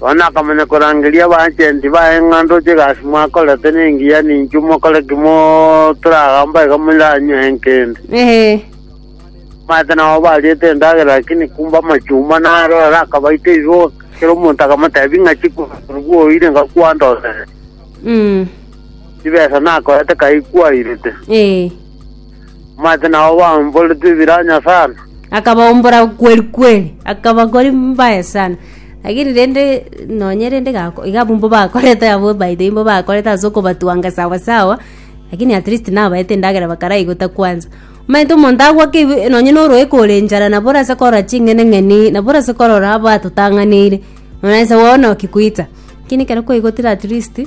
Bono nakamanya korangeria abaajenti baye ng'a ndoche egasi mwakorete nengiya, ninki mokore ki motoragamba iga moranywe enkende? Ee. Omanyete nao bariete endagera, lakini kumbe amachumba naro ere akabaita ebiboka. Kera omonto akamoteebia ng'a chikumi korwa oire iga kwandorere, Mm. chibesa nakorete kai kwairete. Ee. Omanyete nao obaomborete ebiranya sana. Akabaombora kweri kweri, akabakori mbaye sana. Lakini rende nonye rende gako iga abwo mbo bakorete abwo by the way mbo bakorete ase okobatwanga sawa sawa, lakini at least nabaete endagera bakaraigota kwanza. Omanyete omonto agwake ibe nonye na oroeko ore enchara nabo orase korora ching'eneng'eni, nabo orase korora abatotang'aneire, muna inse bono ki goita. Lakini ekero kwaigotire at least,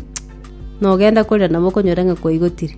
nogenda korira nabo okonyora ng'a kwaigotire.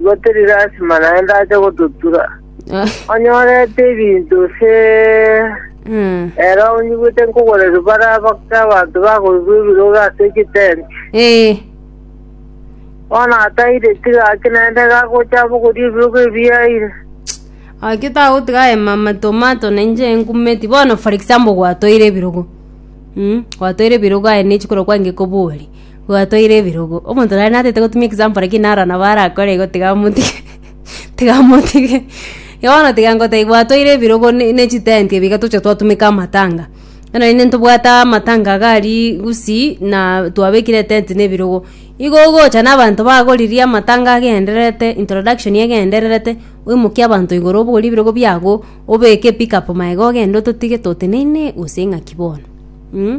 Gotirire asima naende ache gototura. Onyorete ebinto se Mm. ere onyigwete nkogorerwa bare abakte abanto bakorigwa ebirogo ase egitenti. Eh. Bono ataire tiga ake naende gagocha abogoria ebirogo ebiaire. Aki tagotiga aye mama tomato na inche enkumeti. Bono for example gwatoire ebirogo. Mm. Gwatoire ebirogo aye nechi korwa kwange kobori. Gwatoire ebirogo. Omonto nare natete gotumia example lakini naro nabo arakore igo tiga motige tiga motige. Igo bono tiga ngotebie gwatoire ebirogo ne ne chitenti ebi iga tocha twatumeka amatanga. Bono naende ntobwate amatanga iga aria Gusii na twabekire etent na ebirogo. Igo ogocha na abanto bagoririe amatanga agendererete introduction egendererete oimokie abanto igoro obogorie ebirogo biago obeke pickup magega ogende ototige toteneine gose ng'aki bono mh.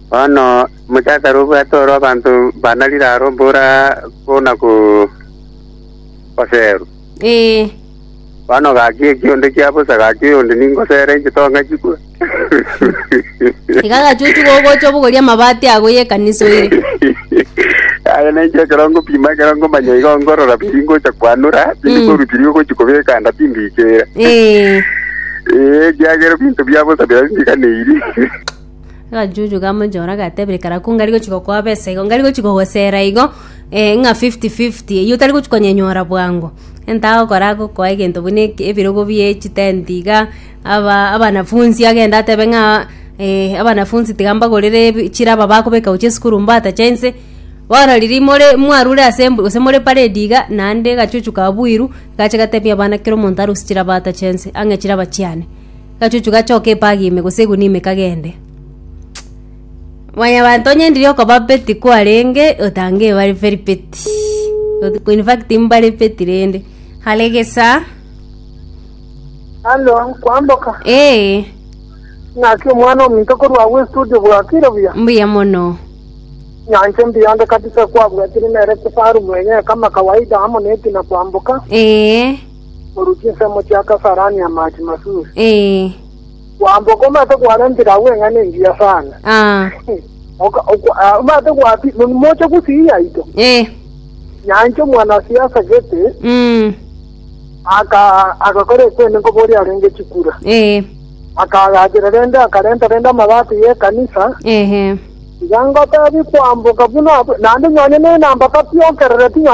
Bono mochakare obwate oro abanto banarire aro mbora buna goserwa. Ee. Bono gaki eki onde kia bosa gaki oyonde ningosere inche tong'a chikwe. Iga agachuchu gogocha obogori amabati ago y'ekanisa oire. Aye na inche ekero ngopima ekero ngomanya igo ngorora biri ngocha kwanura tindi Mm. korwa biri ogochi kobeka anda timbichera. Ee. Ee, ekiagera ebinto bia bosa bira bimbiganeiri. Agachuchu ka monchora gagatebia ekero ko ngari gochia gokoa besa igo ngari gochia gogosera igo eh, ng'a fifty fifty eyio otari gochia konyenyora bwango egento agokora agokoa egento buna eke- ebirogo bie chitenti iga aba abanafunsi agende atebe ng'a eh, abanafunsi tiga mbagorere ebi chiraba bakobeka gochia esukuru mbatache inse bono riria more mwarure ase mb gose more paredi iga naende agachuchu kabuirwe gacha gatebia abana kera omonto arusie chiraba atache inse ang'e chiraba chiane. Gachuchu gachoka epaga ime gose eguni ime kagende. Mwanyabanto onye ndiri okoba peti kwarenge otange ebare very peti. In fact mbare peti rende. Hare gesa. Halo, kwamboka. Ee, Ng'aki omwana ominto korwa agwo estudio bwakire buya. mbuya mono. Nyanche mbiyande kabisa kwabwatire nere kifaru mwenye kama kawaida amo neti na kwamboka. Ee. korwa chinsemo chia Kasarani Hamati Masuri. Ee. Kwamba okomate kwarentire agwo eng'ana engiya sana. Ah. Oka- okwa- ah, omate gwapi mon- moche gusii yaito Ee. nyancha omwanasiasa gete Mm. aka- agakora ekwene nkoboria arenge chikura Ee. akagachera rende akarenta rende amabati y'ekanisa Ehe. iga ngotebi kwamboka buna naende nyonya nenamba kapiokerere tinyonya